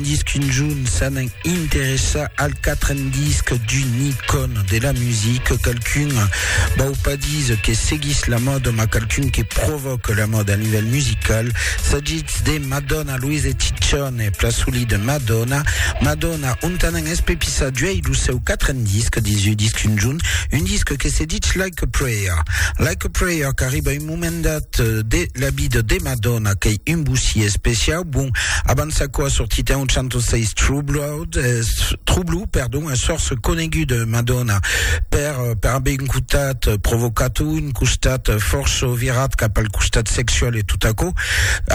disc un jorn s'an interessar al quatren disc d'un icòn de la music, qualqu'un vau pas dis que seguís la mòda mas qualqu'un que provòque la mòda a nivèl musical, s'agís de Madonna, Luis e Ciccione, plan solid Madonna, Madonna ont an espepissat d'uèi lo seu quatren disc, 18 disc un jorn, un disc que se ditz Like a Prayer, Like a Prayer qu'arriba un moment. Comendat de la vida de Madonna qu'ei un bossier especiau, bon, abans aquò a sortit en 806 Troubled, es, Troublou, perdon, es fòrça conegut Madonna per, per aver un cotat provocat o un costat fòrça virat cap al costat sexual e tot aquò.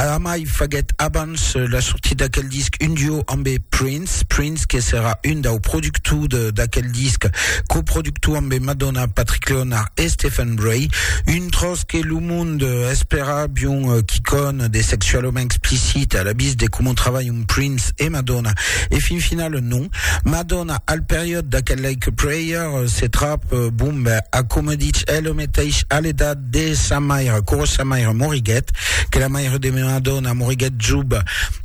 Amai faguèt abans la sortida d'aquel disc un duo ambe Prince, Prince, Prince que serà un dau productor de d'aquel disc, coproductor ambe Madonna, Patrick Leonard e Stephen Bray, un tròç que lo mond espèra bion quicòn de sexualament explicit a la vist de coma travalhan Prince e Madonna, e fin final non. Madonna al periòd d'aquel Like a Prayer se trap bon ben a coma dich el meteis a l'edat. de sa maire, quora sa maire moriguèt, que la maire de meua dòna moriguèt job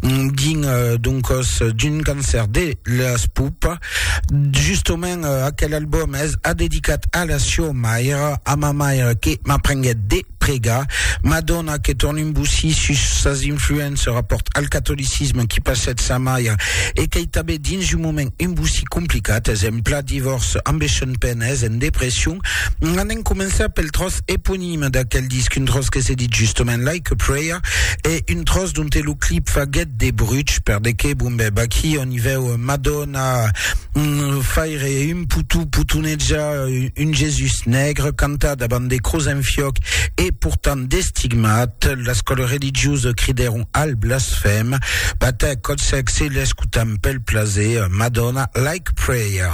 dins d'un còs d'un cancèr de las pupas. Justament aquel album es adedicat a la sieu maire, a ma maire que m'aprenguèt de pregar, ma dòna que torn un bocí sus sas influences rapòrt al catolicisme qui passèt sa maire e qu'ei tanben dins un moment un bocí complicat, exempla, divòrç, ambeishonpèn, es en depression. Anem començar pel tròç eponime d'aquel disc, un tròç que se dit justament Like a Prayer, e un tròç donte lo clip faguèt de bruch, per de qué, bon ben, vaquí on i vèu Madonna faire un poutú potonejar un Jesús negre, cantar davant de cruz en fiòc e portant d'estigmat, l'escòla religiosa cridèron al blasfèm, batèc còt sèc se l'escotam pel plaser, Madonna Like a Prayer.